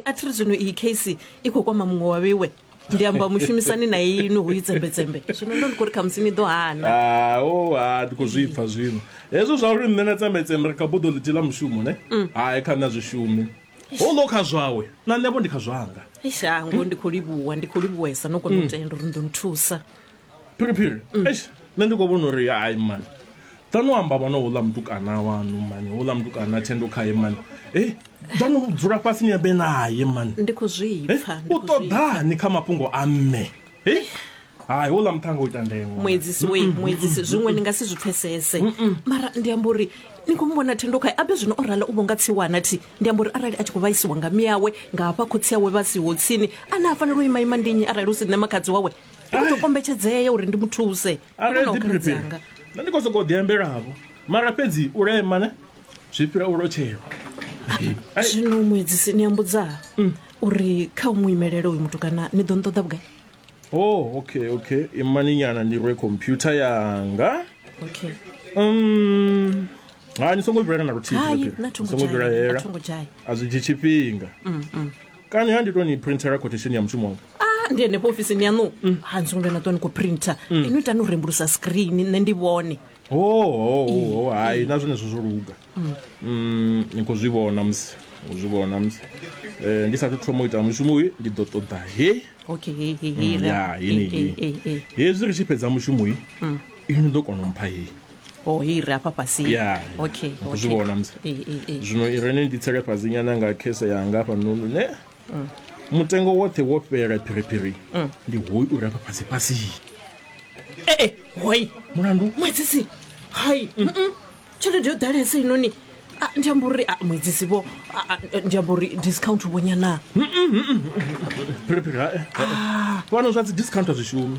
a thi ri zwino iyi case i khou kwama muṅwe wa vhewe ndi amba mushumisani na inwi hu itsembetsembe zwino ndo ndi khou ri khamusi ni ḓo hana Ah, oh, ah, ndi khou zwi pfa zwino hezwo zwa uri nṋe na tsembetsembe ri kha buḓo ḽithihi ḽa mushumo ne hai kha nṋe a zwi shumi houḽo kha zwawe na nṋevho ndi kha zwanga ishango ndi khou livhuwa ndi khou livhuwesa no kona u tenda uri ni ḓo ni thusa phiriphiri mm. eish nṋe ndi khou vhona uri hai mani ḓano amba vhona houḽa mutukana wanu mani houḽa mutukana thendo khae mani e eh, ḓano dzula fhasi ni ambe naye mani ndi khou zwipfa eh, u ṱoḓani kha mafhungo a mme e eh, hai houḽa muṱhanga u ita ndengwa muedzisi wei muedzisi zwiṅwe ni nga si zwi pfesese mara ndi amba uri ni khou muvhona thendo khae abe zwino o rala u vho nga tsiwana thi ndi amba uri arali a tshi khou vhaisiwa nga miyawe nga hafha khotsi awe vha siho tsini a ne a fanela u imaima ndi nnyi arali u si nṋe makhadzi wawe u to kombetshedzea uri ndi muthuse arali dzi prepare nṋe ndi khou sokou ḓiambelavho mara fhedzi u lema ne zwi fhira u lotshelwa zwino muedzisi ni ambudza mm. uri kha u mu imelele uyu muthu kana ni ḓo nṱoḓa vhugai o oh, okay okay imani nyana ndi rwe computer yanga okay um ha ni songo vhilana na luthihi songo vhilahela a zwi dzhi tshifhinga mm, mm. kani ha ndi to ni printela quotation ya mushumo wanga Ah, ndi henefho ofisini yaṋu ha ni songo vhuya na ṱuwa ni khou printer ino itani u rembulusa screen nṋe ndi vhone ohohoho hai na zwenezwo zwo luga Mm, ni khou zwi vhona musi u zwi vhona musi Eh, ndi sathu thoma u ita mushumo uyu ndi ḓo ṱoḓa he okay he he he Mm, ya, he, he, he, he, he. hezwi ri tshi fhedza mushumo uyu ini ḓo kona u mpha heyi o i re afha fhasi ya okay okay. zwi vhona musi Eh, eh, eh. zwino i re ni ndi tsele fhasi nyana nga khese yanga hafha nunu ne Mm. mutengo woṱhe wo fhela phiriphiri Mm. ndi hoyu u re afha fhasi fhasi Eh, eh, hoi mulandu mwedzisi hai mm, mm. tshelede yo ḓalesa inoni Ah, ndi amba uri ah, mwedzisi vho ah, ah, ndi amba uri discount vho nyana phiriphiri hae fhano zwa dzi discount a zwi shumi